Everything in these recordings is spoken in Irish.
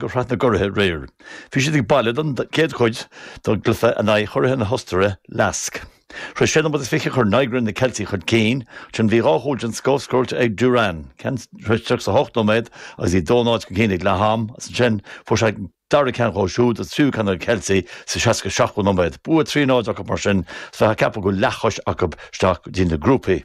go Sraith na gCuraithe aréir. Bhí siad ag baile don gcéad chuid dá gcluiche in aghaidh churaithe na hOstaire, LASK. Tar éis sé nóiméad is fiche chuir Nygren na Ceiltigh chun cinn, ansin bhí dhá chúl den scoth scóráilte ag Duran, ceann tar éis tríocha is a hocht nóiméad agus iad dó náid chun cinn ag leath-am, is ansin fuair sé an dara ceann dhó siúd, an tríú ceann do na Ceiltigh sa seasca seachtú nóiméad. Bua trí náid acu mar sin is bheifeá ag ceapadh go bhfuil leathchois acu isteach go dtí na grúpaí.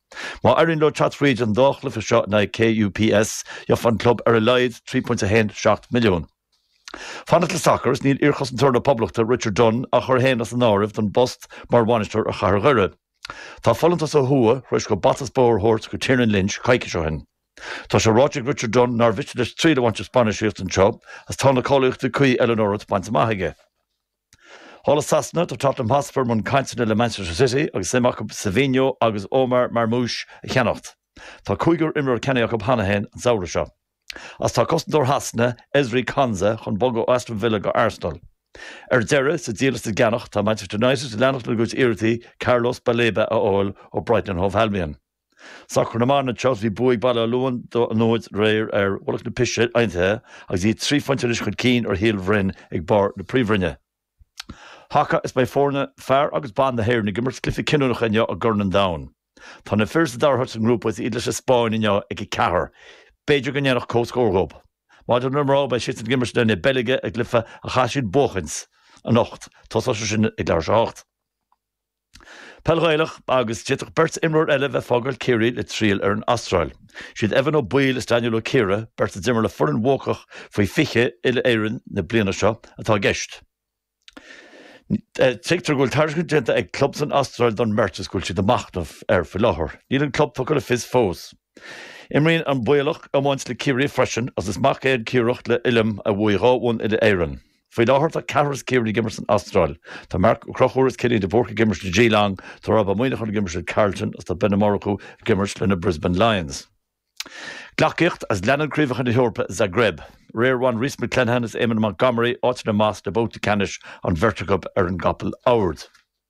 Má éiríonn leo teacht fríd an dá chluiche seo in aghaidh KUPS, gheofadh an club ar a laghad £3.17 milliúin. Fanacht le sacar is níl iarchosantóir na Poblachta, Richard Dunne, á chur féin as an áireamh don bpost mar bhainisteoir ar Chathair Dhoire. Tá folúntas ó thuaidh tar éis dóibh bata is bóthar a thabhairt do Tiernan Lynch coicís ó shin. Tá sé ráite ag Richard Dunne nár mhiste leis triail a bhaint as bainistíocht anseo agus tá na cáilíochtaí cuí eile ón Eoraip bainte amach aige. Thall i Sasana tá Tottenham Hotspur i mbun cainteanna le Manchester City agus suim acu Savinho agus Omar Marmoush a cheannacht. Tá cúigear imreoir ceannaithe acu cheana féin an samhradh seo. Agus tá cosantóir Shasana, Ezri Konsa, chun bogadh ó Aston Villa go Arsenal. Ar deireadh, sa díol is sa gceannach, tá Manchester United ag leanacht lena gcuid iarrachtaí Carlos Baleba a fháil ó Brighton and Hove Albion. Sacar na mban agus bhí bua ag Baile Átha Luain dó náid aréir ar Mhullach na Pise Aontaithe agus iad trí phointe anois chun cinn ar Shíol Bhroin ag barr na Príomhroinne. Haca is beidh foirne fear agus ban na hÉireann ag imirt cluichí cinniúnacha inniu i gCorn an Domhain. Tá na fir sa dara háit sa ngrúpa is iad leis an Spáinn inniu ag a ceathair. B'fhéidir go ndéanfadh comhscór dhób. Maidir le na mná beidh siadsan ag imirt in aghaidh na Beilge i gcluiche a chaithfidh siad buachaint anocht. Tosóidh sé sin ag leathuair tar éis a 7. Peil Ghaelach agus d'fhéadfadh beirt imreoir eile bheith fágáil Ciarraí le triall ar an Astráil. Is iad Evan Ó Baoill is Daniel Ó Ciardha, beirt a d'imir le foireann bhuacach faoi 20 uile-Éireann na bliana seo, atá i gceist. Tuigtear go bhfuil tairiscint déanta ag club san Astráil don mbeirt is go bhfuil siad ag machnamh air faoi láthair. Níl an club tugtha le fios fós. Imríonn an Baoilleach iomáint le Ciarraí freisin agus is mac é an Ciardhach le Uilliam a bhuaigh dhá bhonn uile-Éireann. Faoi láthair tá ceathrar as Ciarraí ag imirt san Astráil. Tá Marc Ó Crochúir is Cillian de Búrca ag imirt le Geelong, tá Rob Ó Muíneacháin ag imirt le Carlton agus tá Ben Ó Murchú ag imirt le na Brisbane Lions. Gleacaíocht is leanann Craobhacha na hEorpa i Zagreb. Aréir bhain Rhys McClenaghan is Eamon Montgomery áiteanna amach sna babhtaí ceannais an bheirt acub ar an gcapall adhmaid.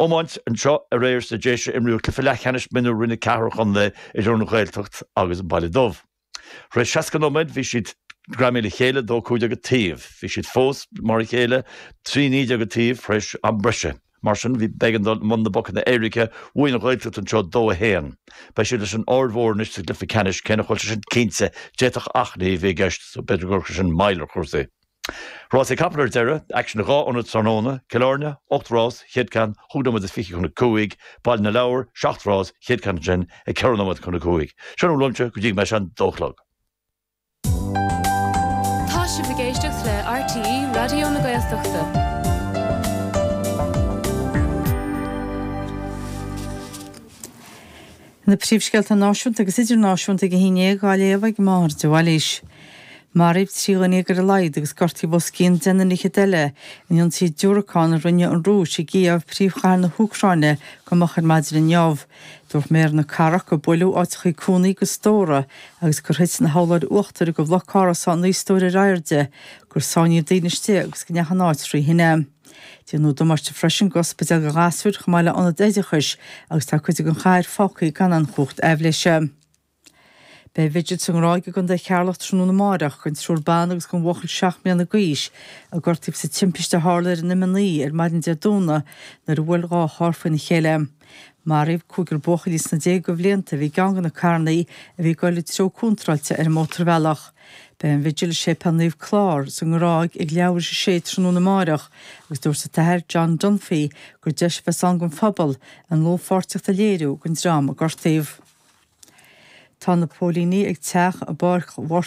iomáint anseo aréir sna Déise imríodh cluiche leathcheannais mionúr Roinn 4 an Chontae idir an Ghaeltacht agus an Baile Dubh. Tar éis 60 nóiméad bhí siad greamaithe le chéile, 2 15 an taobh. Bhí siad fós mar a chéile, 3 19 an taobh, tar éis am breise. Mar sin bhí b'éigean dul i mbun na bpocanna éirice. Bhuaigh an Ghaeltacht anseo 2 1. Beidh siad leis an Aird Mhór anois sa gcluiche ceannais, cé nach bhfuil sé sin cinnte, d'fhéadfadh achainí a bheith i gceist so b'fhéidir go gcuirfidh sin moill ar chúrsaí. Rásaí capall ar deireadh, aicsean i dhá ionad tráthnóna, Cill Áirne, 8 rás, 1ú ceann, 5 nóiméad is 20 chun a cúig, Baile na Lobhar, 7 rás, 1ú ceann ansin, ag 4 nóiméad chun a cúig. Sin a bhfuil uaimse go dtí go mbeidh sé an dó a chlog. Tá sibh ag éisteacht le RTÉ Raidió na Gaeltachta. Na príomhscéalta náisiúnta agus idirnáisiúnta ag a haon déag á léamh ag Máire de Bhailís. Maraíodh trí dhuine dhéag ar a laghad agus gortaíodh os cionn deich nduine fhichead eile in ionsaí diúracán a rinne an Rúis i gCív, príomhchathair na hÚcráine, go moch ar maidin inniu. Dúirt Méara na Cathrach gur buaileadh áiteachaí cónaithe agus stórtha agus gur thit na hurláir uachtair de bhloc árasán naoi stóir ar airde, gur sáinníodh daoine istigh agus go ndeachaigh an áit thrí thine. Déanadh damáiste freisin d'ospidéal do ghasúir chomh maith le ionad oideachais agus tá cuid den chathair fágthaí gan aon chumhacht aibhléise. Beidh vigil sa nGráig i gContae Cheatharlach tráthnóna amárach don triúr ban agus don bhuachaill seacht mbliana d'aois a gortaíodh sa timpiste a tharla ar an M9 ar maidin Dé Domhnaigh nuair a bhuail dhá charr faoina chéile. Maraíodh cúigear buachaillí sna déaga de bhlianta a bhí i gceann de na carrannaí a bhí ag dul an treo contráilte ar an mótarbhealach. Beidh an vigil i Séipéal Naomh Clár sa nGráig ag leathuair tar éis a 6 tráthnóna amáireach agus dúirt an tAthair John Dunphy gur deis a bheas ann don phobal a ndlúthpháirtíocht a léiriú don dream a gortaíodh. Tá na póilíní ag teach i bPáirc Ghort